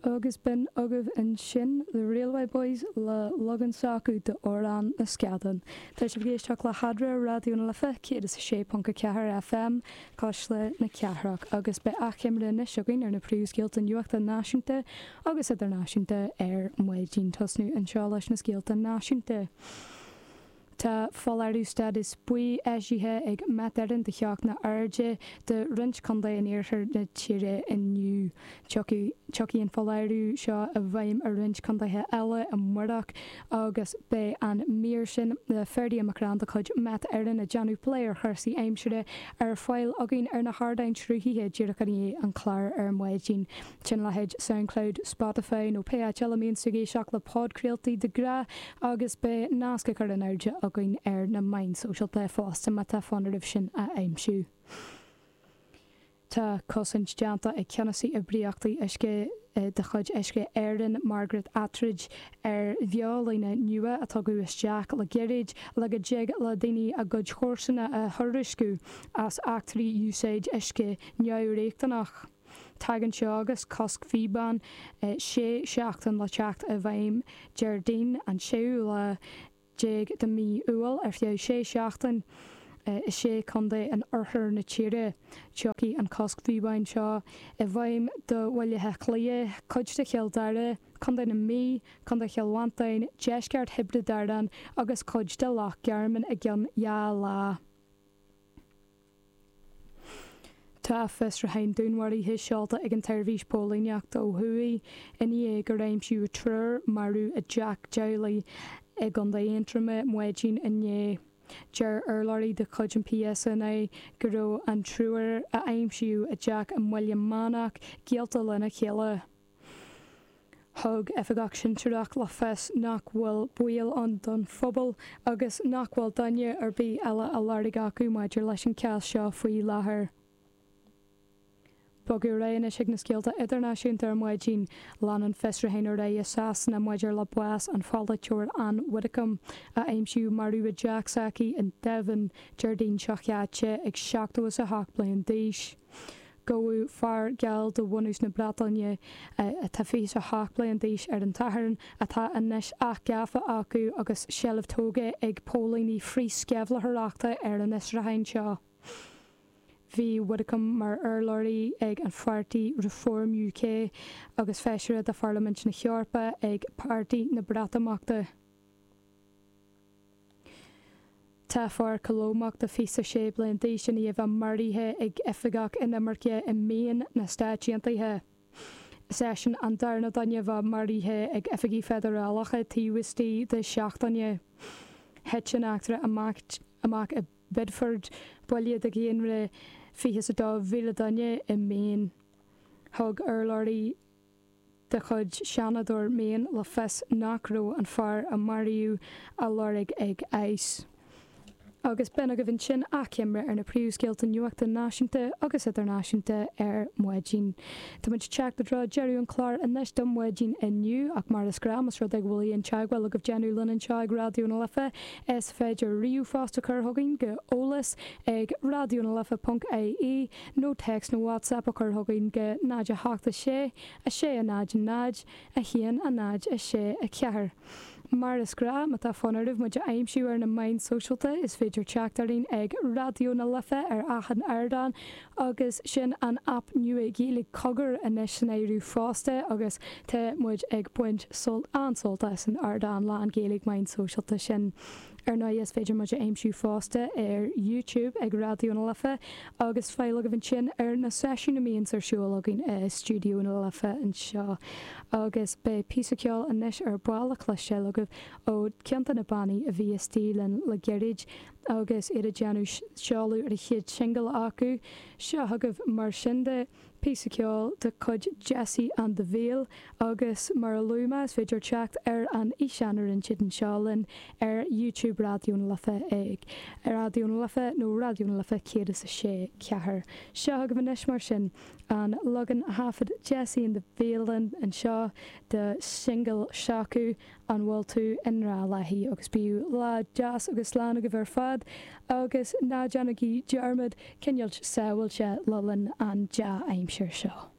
Agus b'in agaibh ansin The Railway Boys le leagan s'acu d'amhrán na Scadán. Tá sibh ag éisteacht le hAdhmhaidin, Raidió na Life 106.4 FM, Cásla na Cathrach, agus beidh achoimre anois againn ar na príomhscéalta nuachta náisiúnta agus idirnáisiúnta ar maidin, tosnú anseo leis na scéalta náisiúnta. Tá foláireamh stádas buí eisithe ag Met Éireann do theochtaí arda do roinnt contae in iarthar na tíre inniu. Tiocfaidh an foláireamh seo i bhfeidhm i roinnt contaetha eile amáireach agus beidh an mír sin le Ferdia McCrann de chuid Met Éireann ag déanamh plé ar chúrsaí aimsire ar fáil againn ar na hardáin sruthaithe díreach i ndiaidh an chláir ar maidin. Ón leithéid Soundcloud, Spotify nó pé áit eile a mbíonn sibh ag éisteacht le podchraoltaí de ghnáth agus beidh nasc a chur in airde againn ar na meáin sóisialta fosta má tá fonn oraibh sin a aimsiú. Tá cosaint déanta ag ceannasaí oibríochtaí uisce de chuid Uisce Éireann, Margaret Attridge, ar bheolíne nua a tugadh isteach le gairid le go dtig le daoine a gcuid comharsana a thuairisciú as eachtraí úsáide uisce neamhriachtanach. Tagann seo agus cosc píobán sé seachtaine le teacht i bhfeidhm Déardaoin an séú lá déag de mhí Iúil ar feadh sé seachtaine i sé chontae in oirthear na tíre. Tiocfaidh an cosc píobán seo i bhfeidhm do Bhaile Átha Cliath, cuid de Chill Dara, Contae na Mí, Contae Chill Mhantáin, deisceart Thiobraid Árann agus cuid de Loch Garman i gceann dhá lá. Tá fiosrúchán dúnmharaithe seolta ag an tSeirbhís Póilíneachta ó thuaidh i ndiaidh gur aimsíodh triúr marbh i dteach teaghlaigh i gContae Aontroma maidin inné. Deir urlabhraí de chuid an PSNI go raibh an triúr a aimsíodh i dteach i mBaile Meánach gaolta lena chéile. Thug Oifigeach Sinsearach le fios nach bhfuil baol ann don phobal agus nach bhfuil duine ar bith eile a lorg acu maidir leis an cás seo faoi láthair. Bogadh ar aghaidh anois chuig na scéalta idirnáisiúnta ar maidin. Lean an fiosrúchán ar aghaidh i Sasana maidir le bás an pholaiteora Ann Widdecombe a aimsíodh marbh i dteach s'aici in Devon Déardaoin seo chaite ag 78 bliain d'aois. Gabhadh fear geal de bhunús na Breataine atá 27 bliain d'aois ar an Satharn, atá anois athghafa acu agus seilbh tógtha ag póilíní frith-sceimhlitheoireachta ar an fhiosrúchán seo. Bhí Widdecombe mar urlabhraí ag an pháirtí Reform UK agus feisire de Pharlaimint na hEorpa ag páirtí na Breatimeachta. Tá fear Colómach de fiche a sé bliain d'aois i ndiaidh a mharaithe ag oifigeach inimirce i Maine na Stáit Aontaithe. Is eisean an darna duine a mharaithe ag oifigigh feidearálacha taobh istigh de seachtaine. Thit an eachtra amach i Biddeford, baile de dhaonra 22,000 duine i Maine. Thug urlabhraí. de chuid Seanadóir Maine le fios nach raibh an fear a maraíodh á lorg ag ICE. Agus b'in agaibh ansin achoimre ar na príomhscéalta nuachta náisiúnta agus idirnáisiúnta ar maidin. Táimid ag teacht i dtreo deireadh an chláir anois do mhaidin inniu, ach mar is gnáth, más rud é go bhfuil aon teagmháil agaibh déanamh linn anseo ag Raidió na Life, is féidir ríomhphost a chur chugainn go eolas ag raidiona life ponc ie. nó text nó WhatsApp a chur chugainn go 0 8 6 6 0 0 1 0 6 4 Mar is gnáth má tá fonn oraibh muid a aimsiú ar na meáin shóisialta is féidir teacht orainn ag Raidió na Life ar achan ardán agus sin an aip nua Ghaeilge Cogar anois san áireamh fosta agus tá muid ag baint an-sult as an ardán lán-Ghaeilge meáin sóisialta sin. Ar ndóigh is féidir muid a aimsiú fosta ar YouTube ag Raidió na Life agus fáil agaibh ansin ar na seisiúin a mbíonns ar siúl againn i Stiúideo na Life anseo. Agus beidh píosa ceoil anois ar ball le cloisteáil agaibh ó ceann de na bannaí a bhí istigh linn le gairid agus iad ag déanamh seoladh ar chéad singil acu. Seo chugaibh mar sin de. Píosa ceoil de chuid Jesse and the Veil agus mar a luaigh mé is féidir teacht ar an fhíseán a rinne siad anseo linn ar YouTube Raidió na Life ag Raidió na Life nó Raidió na Life 106 4. Seo agaibh anois mar sin an leagan a thaifead Jesse and the Veil anseo de shingil s'acu, An bhfuil tú i ngrá léi? Agus bíodh lá deas agus lán agaibh ar fad agus ná déanaigí dearmad coinneáil sábhailte le linn an dea-aimsir seo.